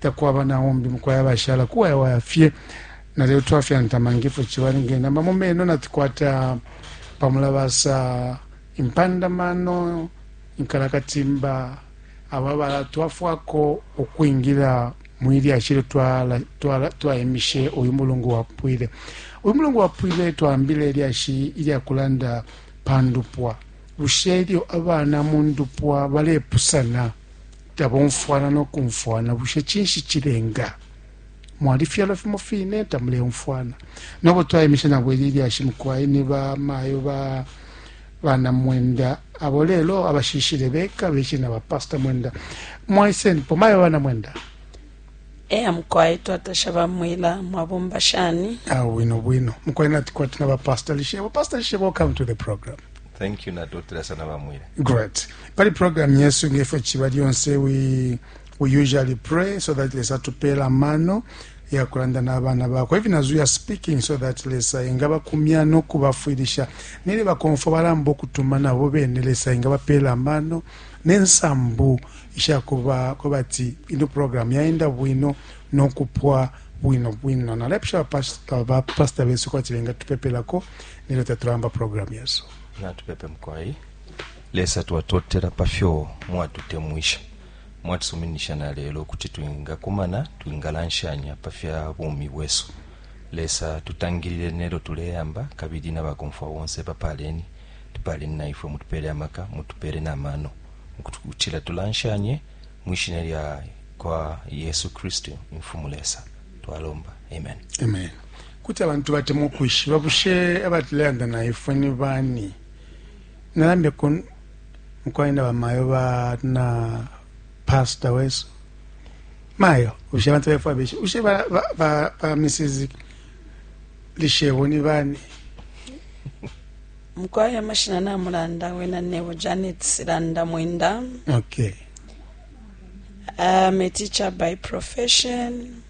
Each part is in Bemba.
Takwaba na umbi mukwai abashala kuwayawaya fye na lelo twafyantama ngefyo ciba nge nama mu meno natukwata pa mulabasa, impanda mano, inkalakatimba abo abalatwafwako ukwingila mwi lyashi ilyo twaimishe uyu mulungu wapwile. Uyu mulungu wapwile twaambile ilyashi ilya kulanda pa ndupwa. Bushe ilyo abana mu ndupwa balepusana, tabomfwana no kumfwana. Bushe cinshi cilenga? Mwalifyalwa fimo fine, tamuleumfwana. No bo twaimishe nabo ili lyashi mukwai ni ba mayo ba bana Mwenda abo lelo abashiishile beka beshile na ba Pastor Mwenda. Mwaisenipo, mayo ba bana Mwenda. Eya mukwai, twatasha ba Mwila. Mwabomba shani? Ah, bwino bwino. Mukwai nati kwati na ba Pastor Lishebo. Pastor Lishebo, welcome to the program. Thank you nadotela sana bamwira. Great. Pali program yesu ngefyo chiba lyonse we we usually pray so that Lesa tupela mano ya kulanda n'abana bakwe even as we are speaking so that Lesa ingaba kumya no kubafwilisha nili bakonfo balamba okutuma nabo bene Lesa ingaba pela mano nensambu isha kuba kubati ino program yaenda bwino no kupwa bwino bwino na lepsha pastor pastor besu kwati benga tupepelako Nino tatulamba program yesu. Natupepe mkwai. Lesa tuwatotela pafyo mwatutemwisha. Mwatusuminisha na lelo kuti tuinga kumana, tuinga lanshanya pafya bumi wesu. Lesa tutangilile nelo tuleyamba kabili na bakomfwa wonse bapaleni. Tupaleni na ifwe mutupele amaka, mutupele na mano. Mkutukutila tulanshanye mwishina lya kwa Yesu Kristu, Mfumu Lesa. Twalomba. Amen. Amen. Kuti abantu batemwa ukwishiba bushe abatileanda na ifwe ni bani. Nalambe ku mukwai na bamayo ba na pasta wesu mayo bushe abantu befwa beshe bushe ba, ba, ba, ba Mrs. Lishebo ni bani mukwai amashina namulanda wena nebo Janet Silanda Mwenda okay I'm a teacher by profession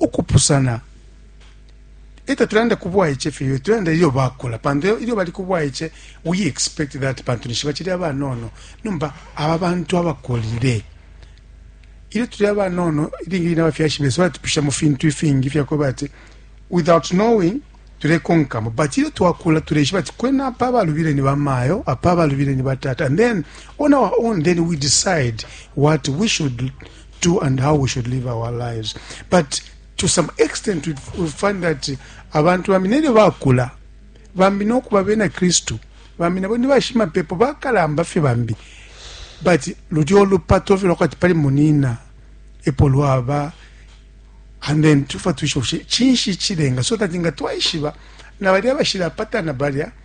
ukupusana e tatulanda ku bwaice fye tulanda ilyo bakula pantu ilyo bali ku bwaice we expect that pantu nishi bacili abanono nomba aba bantu abakulile ilyo tuli abanono ilingi line abafyashi besu balatupisha mu fintu ifingi fyakweba ati without knowing tulekonkamo but ilyo twakula tuleishiba ati kwena apa abalubile ni bamayo apa abalubile ni batata and then on our own then we decide what we should do and how we should live our lives but to some extent we, we find that abantu bambi nelyo bakula bambi nokuba bena kristu bambi nabo nibashimapepo bakalamba fye bambi but lulyo lupato fye lwakwati pali munina epo lwaba and then tufa tuisha bushe cinshi cilenga so that nga twaishiba na balya bashilapatana balya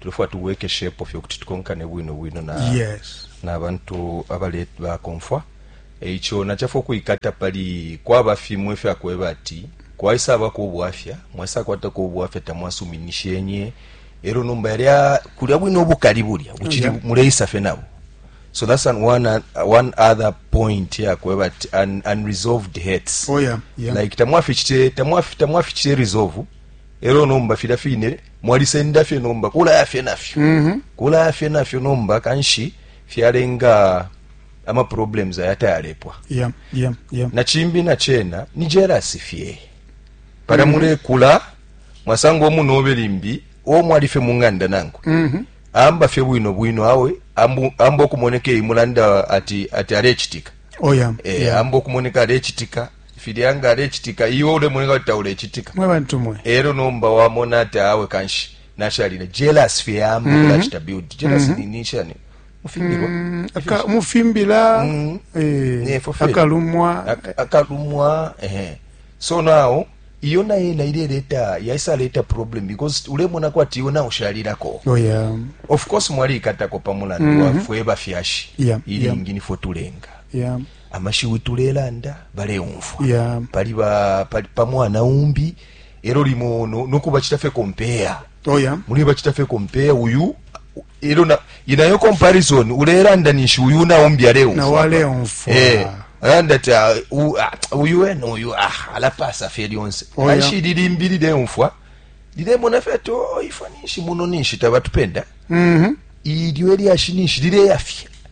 tulefwaya tubwekeshepo fye ukuti tukonkane bwino bwino na yes. na bantu abale bakomfwa eico nachafa ukuikata pali kwaba fimwe fya kweba ati kwaisa abako ubwafya mwasa kwata ko ubwafya tamwasuminishenye ero nomba yali kulya bwino obukali bulya buchiri yeah. muleisa fe nabo so that's an one one other point ya kweba ati un, unresolved hurts oh yeah, yeah. like tamwafichite tamwafichite resolve ero nomba fira fine mwalisenda fye nomba kulaya fye nafyo mm -hmm. kulaya fye nafyo nomba kanshi fyalenga ama problems ayatayalepwa yeah, yeah, yeah. na chimbi na chena ni jealous fye para mm -hmm. mulekula mwasanga omunobe limbi omwali fye munganda nangu mm -hmm. amba fye bwino bwino awe amba okumoneka imulanda ati ati alechitika oh, yeah, eh, yeah. amba okumoneka alechitika filya nga alecitika iwe ulemoneka kuti taulecitika mwe bantu mwe ero nomba wamona ati awe kanshi nashalile jealous fye yamba mm -hmm. build jealous mm -hmm. ni nishani mufimbirwa mm, aka mufimbira mm, eh, akalumwa aka, akalumwa eh so now iyo naye naire leta yaisa leta problem because ulemona kwati iwe nawe ushalirako oh, yeah. of course mwali ikatako pamulandu mm -hmm. wafwe bafyashi yeah, iringi yeah. nifwe tulenga yeah. amashiwi tulelanda baleumfwa yeah. pali ba pali pa mwana umbi ero limo no, no kubachita fe compare oh yeah muli bachita fe compare uyu ero na inayo comparison ulelanda nishi uyu na umbi aleumfwa na wale umfwa eh anda ta uh, ah, uyu eno uyu ah alapasa fe lyonse oh yeah ashi lilimbili de umfwa lile mona fe to oh, ifanishi muno nishi tabatupenda mhm mm ilyo elyashi nishi lile yafye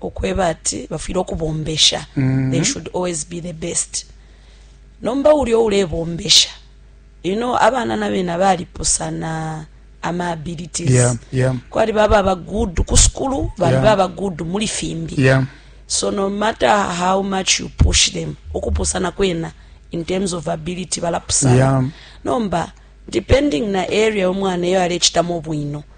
ukweba ati bafwile ukubombesha mm-hmm. they should always be the best nomba uli oulebombesha you know abana na bena balipusana ama abilities yeah, yeah. kwali baba aba good ku sukulu bali yeah. baba good muli fimbi yeah. so no matter how much you push them ukupusana kwena in terms of ability balapusana yeah. nomba depending na area omwana eyo alechitamo bwino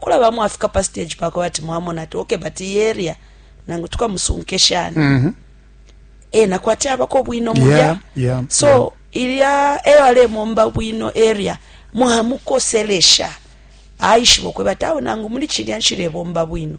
kulaba mwafika pa stage pako bati mwamona ati okay but iyi area nangu tukamusunke shani mm -hmm. e nakwati abako bwino mulya yeah, yeah, so yeah. ilya eyo alemomba bwino area mwamukoselesha aishiba okweba tawe nangu muli chilya nshilebomba bwino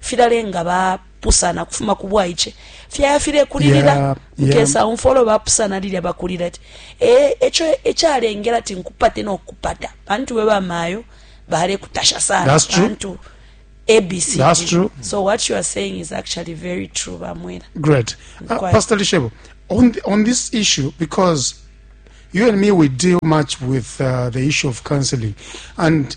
filalenga ba pusana kufuma ku bwaice fyaya filekulilila yeah, yeah. nkesa umfwa ulo bapusana lilya bakulila ati e, eco ecalengela ti nkupate nokupata pantu we bamayo balekutasha sana pantu abc That's true. so what you are saying is actually very true bamwela great uh, pastor lishebo on, the, on this issue because you and me we deal much with uh, the issue of counseling and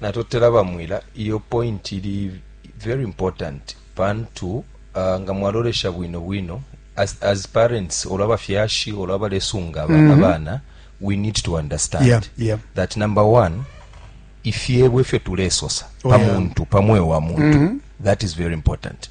natotela ba mwila iyo point ili very important pantu uh, nga mwalolesha bwino bwino as, as parents olo abafyashi olo abalesunga mm -hmm. abana we need to understand yeah, yeah. that number one ifyebo ifyo tulesosa oh, pa muntu yeah. pa mweo wa muntu mm -hmm. that is very important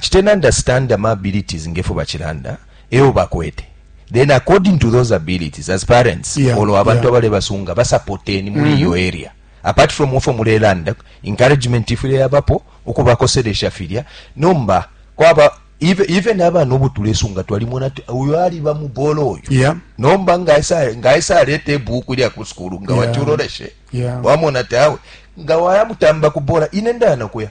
citeni understand ama abilities ngefyo bacilanda eyo bakwete then according to those abilities as parents yeah, olo abantu yeah. abalebasunga basapoteni muli mm-hmm. iyo mm -hmm. area apart from ofo mulelanda encouragement ifile yabapo ukubakoselesha filya nomba kwaba even, even abana obo tulesunga twalimona ti uyo aliba mubolo oyo yeah. nomba ngaisa aleta ebuku lya ku sukulu nga yeah. wacuroleshe yeah. wamona ti awe nga wayamutamba kubola ine ndana kuya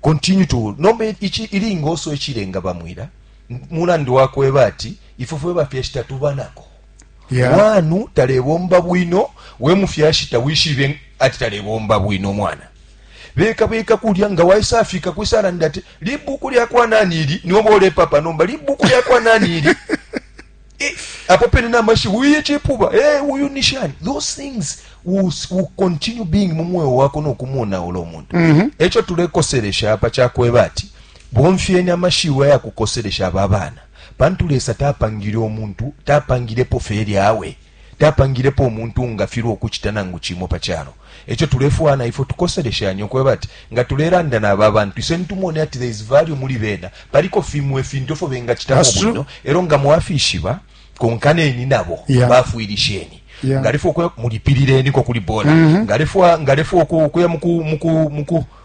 Continue to nomba ichi ilingoso ichilenga bamwila mulandu wakweba ati ifwe fwe bafyashi tatuba nako yeah. wanu talebomba bwino we mufyashi tawishibe ati talebomba bwino mwana beka beka kulya nga waisafika kwisalanda ati libuku lyakwa nani ili noba ulepapa nomba libuku lyakwa nani ili apo pene na mashiwi uye cipuba e eh, uyu ni shani those things will, will continue being mu mweo wako nokumuonaula umuntu mm -hmm. eco tulekoselesha apa cakweba ati bomfyeni amashiwi ayakukoselesha aba bana pantu lesa tapangile omuntu tapangilepo feri awe tapangilepo omuntu ngafirwa okucita nangu cimo pa calo E co tulefwaya na ifwe tukoseleshanye, ukweba ati nga tulelanda na aba bantu iseni tumone ati there is value muli bena, paliko fimo ifintu ifyo bengacitamo That's true. bwino, e lyo nga mwafishiba, konkaneni nabo, Yeah. bafwilisheni. Yeah. Nga alefwa ukuya, mulipilileniko kuli bola. Nga alefwa- nga alefwa uku- ukuya muku- muku- muku-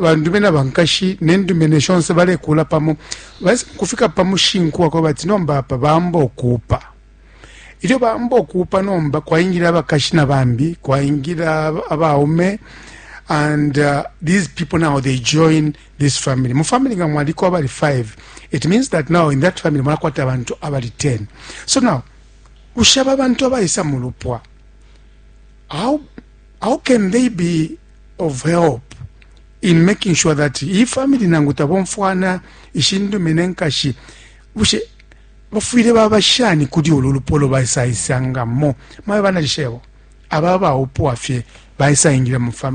bandume na bankashi nendume neshonse balekula pamo basi kufika pamushinku wakwa bati nomba apa bamba okuupa ilyo bamba okuupa nomba kwaingila abakashi na bambi kwaingila abaume and uh, these people now they join this family mu family nga mwaliko abali 5 it means that now in that family mwalakwata abantu abali 10 so now ushaba abantu abaisa mu lupwa how, how can they be of help in making sure that iyi family nangu tabomfwana ishindume nenkashi bushe bafwile baba shani kuli ulu lupolo baisaisangamo mabe banalishebo aba baupwa fye baisaingira mu family